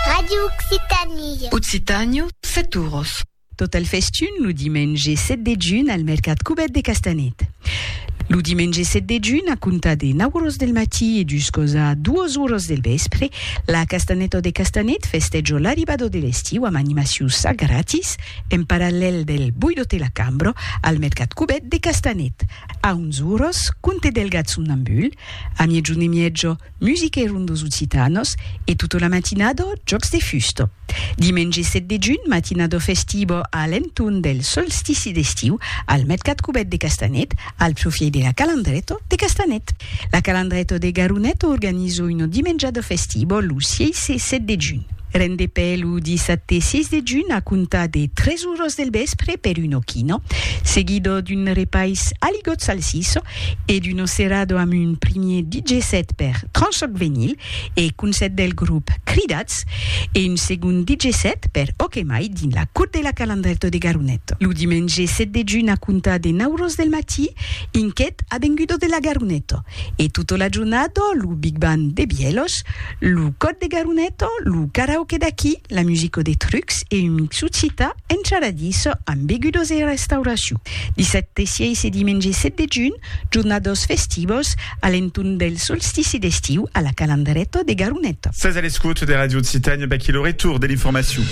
Radio Occitanie. Occitània, Setouros. Tot el festun lo dimenge 7 de junh al mercat Cubèt de Castanet. Lo dimenge 7 de junh, a comptar de 9 oras del matí e juscos a 2 oras del vèspre, la Castanèta de Castanet festèjo l'arribada de l'estiu amb animacions a gratis en parallèl del Boidote la Cambra al mercat Cubèt de Castanet. A 11 oras, Conte del Gat Somnambul, a miègjorn e mièja, Musica e rondos occitanos e tota la matinada jòcs de fusta. Dimenge 7 de junh, matinada festiva a l'entorn del solstici d'estiu al mercat cubèt de Castanet, al profièit de la Calandreta de Castanet. La Calandreta de Garonet organiza una dimenjada festiva lo 6 e 7 de junh. Rendepè lo dissabte 6 de junh a comptar de 3 oras del vèspre per una quina, seguida d'un repais a ligotz salsissa, e d'Uno Cerrado amb un primier DJ set per Tranchoc Venyl e Concèrt del grop Cridats e un segond DJ set per Ok Mai dins la Cour de la Calandrèto de Garonet lo dimenge 7 de junh a comptar de 9 ros del matí inquet Avengudo de la Garoneto e tota la jornada lo Big Band de Bièlhos Lo còd de Garuneto, lo karaoke d'aquí, la musico de trucs e un mixu cita encharadís amb begudos e restauracion. Dissabte 6 e dimenge 7 de junh, jornados festivos a l'entorn del solstici d'estiu a la Calandreto de Garuneto. Sètz a l'escòt de Radio Occitània, v'aquí lo retorn de l'informacion.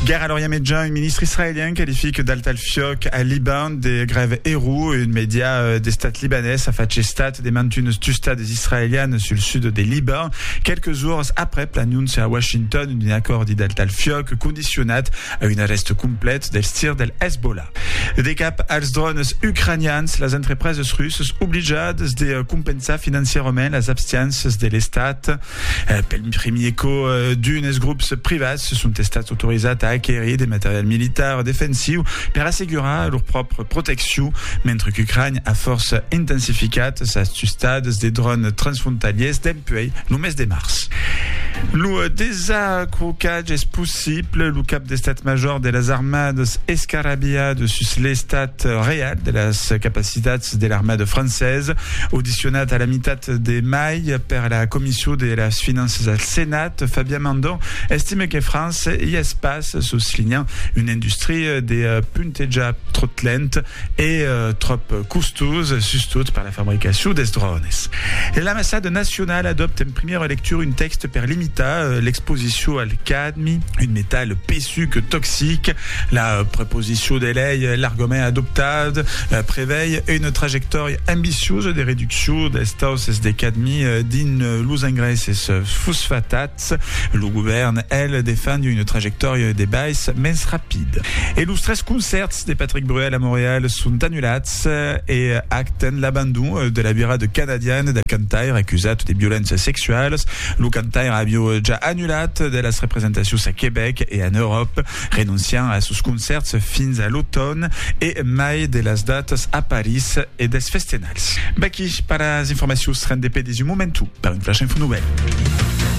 Guèrra a l'Orient Mejan, un ministre israelian qualific d'altalfiòc al Liban de grève error, un mèdia d'estat libanés a fach estat de mantuns tustats israelianes sul sud de Liban, quelques jours aprèp l'anóncia a Washington d'un acòrdi del tal fiòc condicionat a un arrèst complet dels tirs del Hezbollah. De cap als drònes ucranians, las entrepreses russas oblijadas de compensar financièrament las abstiéncias de l'estat. Pel primier còp, d'unes grops privats son estats autorizats a aquerir de material militar defensiu per assegurar lor pròpria proteccion, mentre qu'Ucrania a fòrça intensificat sas tustas de dròns transfrontalièrs dempuèi lo mes de març. Lo desacrocatge es possible, lo cap d'Estat Major de las Armadas escarrabilha de sus l'estat real de las capacitats de l'armada francesa. Audicionat a la mitat de mai per la Comission de las Finanças al Senat, Fabien Mandon estime que França i es pas soslinhant una industria de puntejar tròp lent. e tròp costós, sustot per la fabricacion dels drònes. L'Ambassada nacionala adòpta en primièra lectura un tèxte per limitar l'exposicion al cadmi, un metal pesuc toxic. La proposicion de lei largament adoptat prevei una trajectòria ambiciosa de reduccion dels tausses de cadmi dins los engraisses fosfatat. Estats. Lo govèrn, el, defend una trajectòria de bais mens rapid. E los tres concèrts de Patrick Bruel a Montreal son anulats e acten l'abandon de la vira de canadian del cantaire acusat de violéncias sexualas. Lo cantaire aviá ja anulat de las representacions a Quebec e en Euròpa, renonciant a sos concèrts fins a l'automn e mai de las datas a París e dels festenals. V'aquí per las informacions rendepedi's un momentu per un flash info novèl.